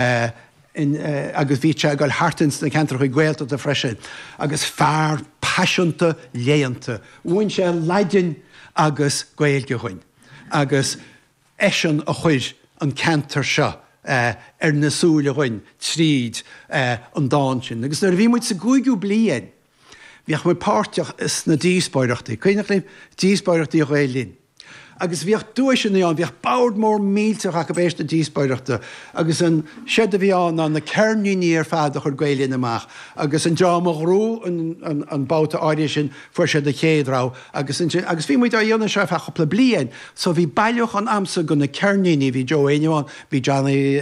agus bhí sé ag dul thart ins na ceantracha Gaeltachta freisin, agus fear paiseanta léannta. Mhúin sé Laidin agus Gaeilge dhúinn, agus eisean a chuir an ceantar seo ar na súile dhúinn tríd an dán sin. Agus nuair a bhí muid sa gcúigiú bliain, Bhíodh muid páirteach sna díospóireachtaí, cuimhneach libh díospóireachtaí Ghael Linn? agus bhíodh duaiseanna ann, bhíodh bord mór millteach acu tar éis na díospóireachta agus an seod a bhí ann ná na ceirníní ar fad a chuir Gael Linn amach agus an dream a ghnóthaigh an babhta áirithe sin fuair siad an chéad rogha agus ansin, agus bhí muid á dhéanamh seo ar feadh chúpla bliain so bhí bailiúchán agamsa de na ceirníní, bhí Joe Éinniú ann, bhí Johnny,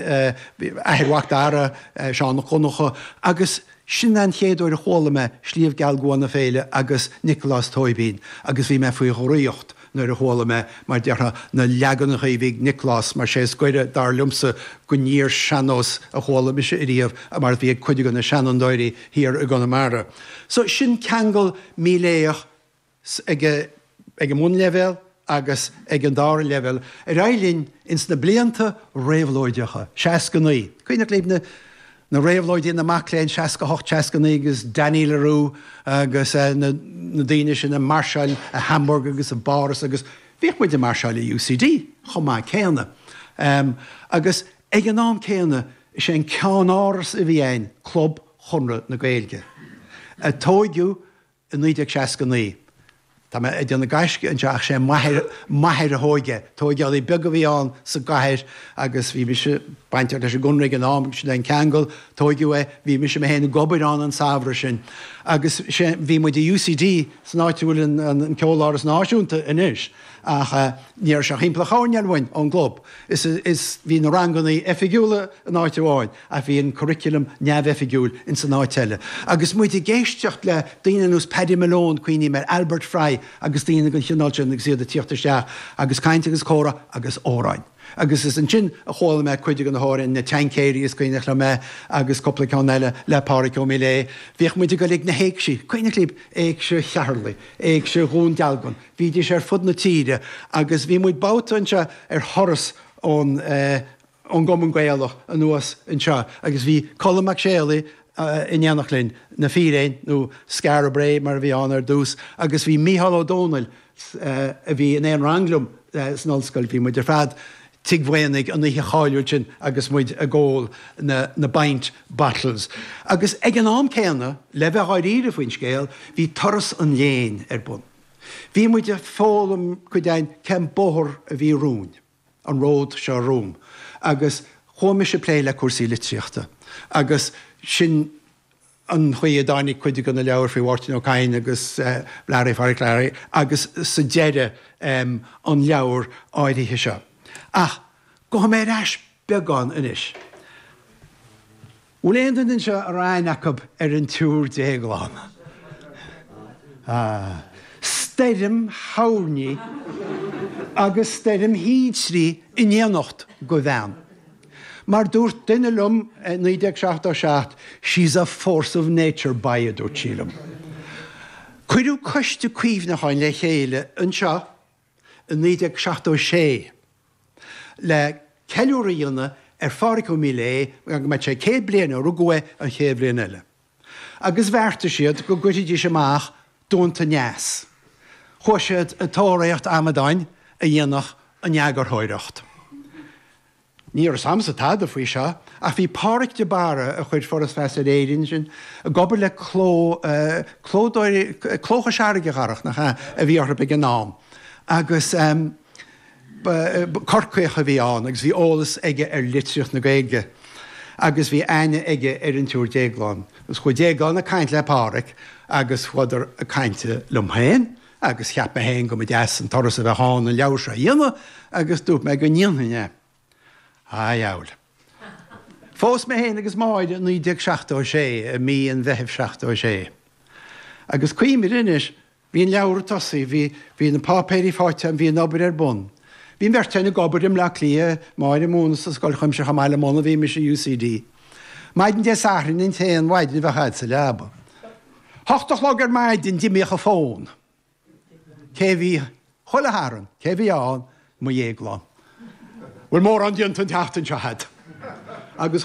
athair Mhac Dara, Seán 'ac Dhonncha agus. Sin an chéad uair a chuala mé Sliabh Geal gCua na Féile agus Nioclás Tóibín agus bhí mé faoi dhraíocht nuair a chuala mé, mar déarfá, na leaganacha a bhí ag Nioclás mar sé is goire, dar liomsa, don fhíor-shean-nós a chuala mise ariamh a mar a bhí ag cuid de na seanfhondúirí thiar i gConamara. So sin ceangal Miléadhach. ag an mbunleibhéal agus ag an dara leibhéal ar aghaidh linn ins na blianta réabhlóideacha, 69, cuimhneach libh na réabhlóidí na mac léinn, 68, 69, agus Danny le Rouge agus na daoine sin ag máirseáil i Hamburg agus i bPáras agus bhíodh muid ag máirseáil i UCD chomh maith céanna. Agus ag an am céanna is é an ceannáras a bhí ann Club Chonradh na Gaeilge, a tóigeadh i 1969. Tá mé ag déanamh gaisce anseo ach sé m'athair, m'athair a thóg é. Tóigeálaí beag a bhí ann sa gcathair agus bhí mise bainteach leis an gConradh ag an am, sin é an ceangal, tóigeadh é, bhí mise mé féin ag obair ann an samhradh sin. Agus sé, bhí muid i UCD san áit a bhfuil an, an, an Ceoláras Náisiúnta anois ach eh, ní raibh sé ach thimpeall an choirnéil uainn ón gclub is, is bhí na ranganna oifigiúla in áit amháin, ach bhí an curriculum neamhoifigiúil ins an áit eile. Agus muid ag éisteacht le daoine ar nós Paddy Malone, cuimhním ar Albert Fry agus daoine den chineál sin agus iad ag tíocht isteach agus caint agus comhrá agus amhráin. Agus is ansin a chuala mé cuid de na hamhráin, Na Tincéirí is cuimhneach liom é agus cúpla ceann eile le Pádraig Ó Miléadha. Bhíodh muid ag dul ag na hÉigsí, cuimhneach libh, Éigse Cheatharlaí, Éigse Dhún Dealgan, bhídís ar fud na tíre agus bhí muid babhta anseo ar thuras ón eh, ón gCumann Gaelach anuas anseo agus bhí Colm Mac Séalaigh in éineacht linn, Na Fíréin, nó Skara Brae mar a bhí ann ar dtús, agus bhí Mícheál Ó Domhnaill a bhí in aon rang liom san ollscoil, bhí muid ar fad Tigh Mhaonaigh an oíche cháiliúil sin agus muid ag ól na bpint bottles. Agus ag an am céanna, le bheith dháiríre faoin scéal, bhí turas an léinn ar bun. Bhí muid ag foghlaim go deimhin cén bóthar a bhí romhainn. an ród seo romham agus chuaigh mise ag plé le cúrsaí litríochta agus sin an chaoi a dtáinig cuid de na leabhair faoi Mháirtín Ó Cadhain agus Learaí Phádraic Learaí agus sa deireadh an leabhar áirithe seo. Ach gabhfaidh mé ar ais beagán anois. Bhfuil aon duine anseo a raibh aithne acu ar an tSiúr Déaglán? Ah. Stoirm thoirní agus stoirm thintrí in éineacht, de bhean. Mar dúirt duine liom i 1977, 'she's a force of nature, boy' a dúirt sí liom. Cuireadh coiste cuimhneacháin le chéile anseo. i 1976 le ceiliúradh a dhéanamh ar Phádraig Ó Miléadha go mbeadh sé céad bliain ó rugadh é an chéad bhliain eile agus bheartaigh siad go gcuirfidís amach Duanta Aneas. Chuaigh siad i dtóraíocht amadáin a dhéanfadh an eagarthóireacht. Ní raibh a fhios agamsa tada faoi seo, ach bhí Páraic de Barra, a chuir Foras Feasa ar Éirinn ansin, ag obair le cló, clódóir, Cló Chois Fharraige, a Dharach, nach ea, a bhí orthu ag an am. Agus ba, Corcaíoch a bhí ann agus bhí eolas aige ar litríocht na Gaeilge. Agus bhí aithne aige ar an tSiúr Déaglán. Agus chuaigh Déaglán ag caint le Páraic agus chuadar ag caint liom féin. Agus cheap mé féin go mba deas an turas a bheadh ann an leabhar seo a dhéanamh agus dúirt mé go ndéanfainn é. A dheabhail. Phós mé féin agus Máire i 1976, i mí an Mheithimh 76. Agus cuimhním anois, bhí an leabhar tosaithe, bhí, bhí na páipéirí faighte agam, bhí an obair ar bun. Bhí an bheirt againn ag obair i mBleá Cliath, Máire ag múineadh sa Scoil Chuimsitheach i mBaile Munna, bhí mise i UCD. Maidin Dé Sathairn an t-aon mhaidin a bheifeá sa leaba. hocht a chlog ar maidin, d'imíodh an fón. Cé a bhí chuile Shatharn? Cé a bhí ann? Mo Dhéaglán. Bhfuil mórán déanta an tseachtain seo agat? Agus.